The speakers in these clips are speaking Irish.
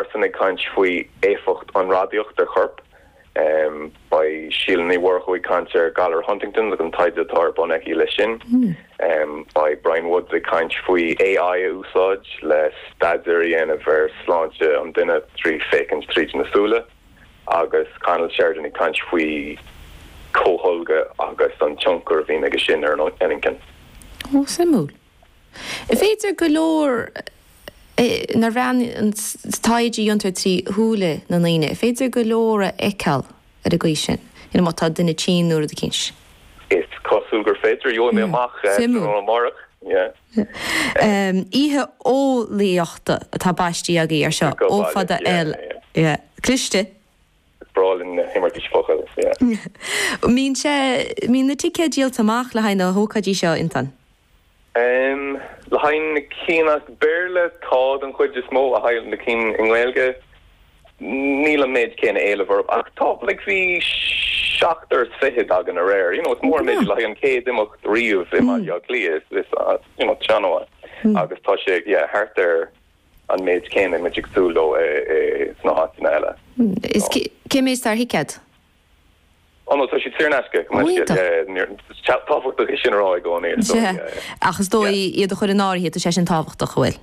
Iadsan ag caint faoi éifeacht an radaíocht ar choirp. Beidh Síle Ní Mhurchú ag caint ar Galar Huntington's agus an taighde atá ar bun aici leis sin. Beidh Brian Woods ag caint faoi AI a úsáid le staidéar a dhéanamh ar sláinte an duine trí féachaint tríd na súile. Agus Conall Sheridan ag caint faoi comhtholgadh agus an tionchar a bhíonn aige sin ar an inchinn. Ó, suimiúil. Is féidir go leor nar bhean an taighde a dhéantar trí shúile na ndaoine, féidir go leor a fheiceáil ar an gcaoi sin, you know, má tá duine tinn nó rud eicínt. Is cosúil gur féidir. Gheobhaidh mé amach tráthnóna amárach. Yeah. Oíche eolaíochta atá baistithe agaibh ar seo, ó fada, oil. Yeah. Cliste. Is breá linn na himeartais focal yeah. mbíonn sé, mbíonn na ticéid díolta amach le haghaidh na hócáidí seo iontach. Em. le haghaidh na cinn as Béarla tá den chuid is mó, le haghaidh na cinn i nGaeilge níl an méid céanna éilimh orthu ach tá like bhí seachtar is fichead againn aréir you know is mór an méid le haghaidh an chéad imeacht riamh i mBaile Átha Cliath is is you know seánra nua agus tá sé yeah thart ar an méid céanna atá muid ag súil leo sna háiteanna eile. Is cén méid atá ar thicéad? Ó no, tá siad saor in aisce, go maith scéal. Tábhachtach é sin a rá i gcónaí, is dóigh. Ach is dóigh, iad a chur in áirithe, tá sé sin tábhachtach, an bhfuil?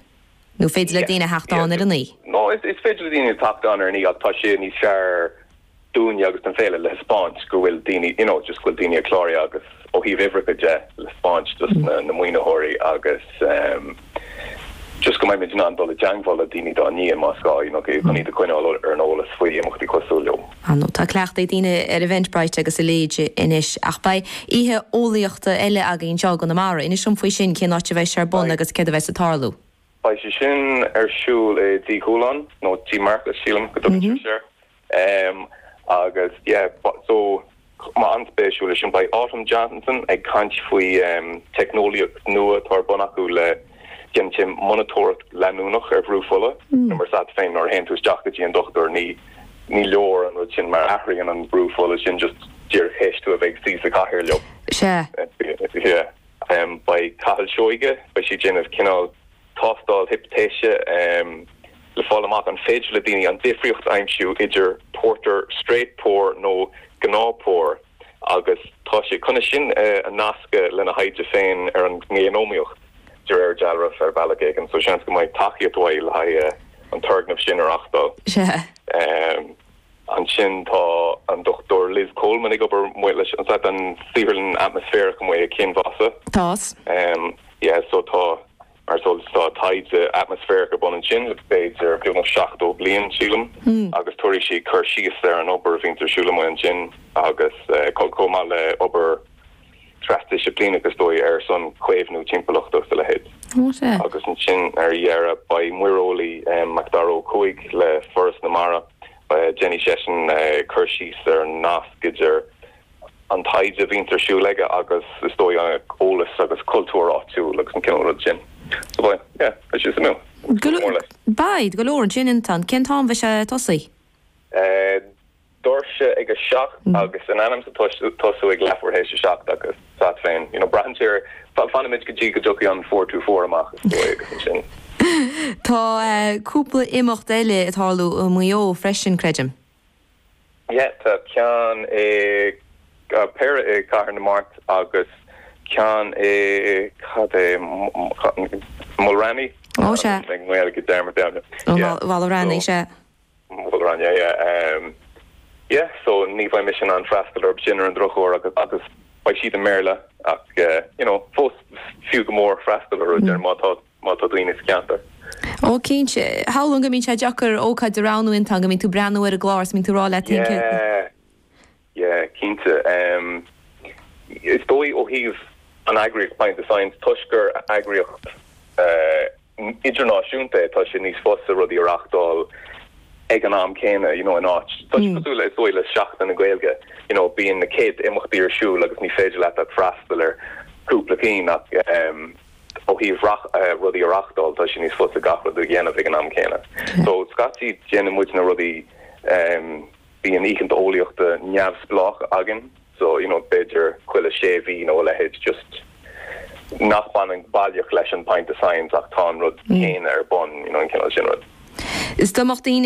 Nó féidir le daoine theacht ann ar an oíche? No, is féidir le daoine teacht ann ar an oíche ach tá sé níos fearr dúinne agus don Féile le thaispeáint go bhfuil daoine you know just go bhfuil daoine ag clárú agus ó thaobh uimhreacha de le taispeáint dos na na maoinitheoirí agus ehm just go mbeimid in ann dul i dteangmháil le daoine dá ndiaidh más gá you know chun iad a choinneáil ar an eolas faoi imeachtaí cosúil leo. Ah no tá cleachtadh ag daoine ar Eventbrite agus a leithéid anois ach beidh oíche eolaíochta eile againn anseo i gConamara inis dom faoi sin cén áit a bheidh sé ar bun agus céard a bheidh ag tarlú. Beidh sé sin ar siúl i dTigh Chualáin nó Tigh Mharcais sílim go dtugann sibh air agus yeah so beidh an-spéisiúil é sin. Beidh Autumn Johnston ag caint faoi teicneolaíocht nua atá ar bun acu le, déanann sé monatóireacht leanúnach ar bhrú fola nó mar is eol duit féin nuair a théann tú isteach go dtí an dochtúir ní ní leor an rud sin mar athraíonn an brú fola sin just díreach théis tú a bheith ag suí sa chathaoir leo. Sea. Yeah. Beidh Cathal Seoige, beidh sé ag déanamh cineál tástáil hipitéise le fáil amach an féidir le daoine an difríocht a aimsiú idir pórtar straight pour nó gnáth pour agus tá sé chun é sin a nascadh lena thaighde féin ar an ngéanómaíocht de réir dealraimh ar bhealach éigin so seans go mbeidh tacaíocht uaidh le haghaidh an turgnamh sin a reachtáil. Ansin tá an Dr Liz Coleman ag obair amuigh leis an stáisiún, saotharlann atmaisféarach amuigh ag Ceann Mhása. Tá's. Em, yeah, so tá, mar is eol duit tá taighde atmaisféarach ar bun ansin le b'fhéidir beagnach seachtó bliain, sílim, agus tabharfaidh sí cur síos ar an obair a bhíonns ar siúl amuigh ansin agus, eh, chomh maith le obair trasdisciplíneach is dóigh ar son caomhnú timpeallachta is a leithéid. Agus ansin ar dheireadh beidh muireolaí MacDara Ó Cuaig le Foras na Mara. Déanfaidh seisean cur síos ar an nasc idir an taighde a bhíonns ar siúl aige agus is dóigh eolas agus cultúr áitiúil agus an cineál rud sin. So beidh, yeah, beidh sé suimiúil. Beidh, go leor ansin. Anton, cén t-am a mbeidh sé ag tosaí? doirse ag a seacht agus in ainm is a bheith ag tosú ag leathuair théis a seacht agus 's agat féin you know braitheann sé ar fanfaimid go dtí go dtiocfaidh an 424 amach is dóigh agus ansin. Tá cúpla imeacht eile ag tarlú i Maigh Eo freisin creidim? Yeah tá ceann nó péire i Cathair na Mart agus ceann i, cad é Mulranny? Oh sea. Tá mé i nGaeilge dearmad yeah. Bhal Mulranny sea. An Mhala Raithní, ehm, yeah, so ní bheidh mise in ann freastal orthu sin ar an drochuair agus, agus beidh siad i mBéarla ach eh, you know, fós fiú go mór freastal orthu, déarfainn, má tá, má tá daoine sa cheantar. Ó, cinnte. Shamhlóinn go mbíonn sé deacair ócáid a roghnú Anton, go mbíonn tú ag breathnú ar an gclár is go mbíonn tú ag rá leat, Yeah. Yeah, cinnte. Is dóigh ó thaobh an eagraíocht Pint of Science, toisc gur eagraíocht idirnáisiúnta é, tá sé níos fusa rudaí a reáchtáil ag an am céanna, you know, in áit, tá sé cosúil le, is dóigh, le Seachtain na Gaeilge, you know, bíonn na céadta imeachtaí ar siúl agus ní féidir leat ach freastal ar chúpla ceann ach ó thaobh rudaí a reáchtáil, tá sé níos fusa gach rud a dhéanamh ag an am céanna. So, scaití déanann muidne rudaí. Bíonn oícheanta eolaíochta neamhspleách againn so you know b'fhéidir chuile sé mhí nó a leithéid just nach baineann baileach leis an Pint of Science ach tá an rud céanna ar bun you know an cineál sin rud. Is dá mbeadh daoine ag.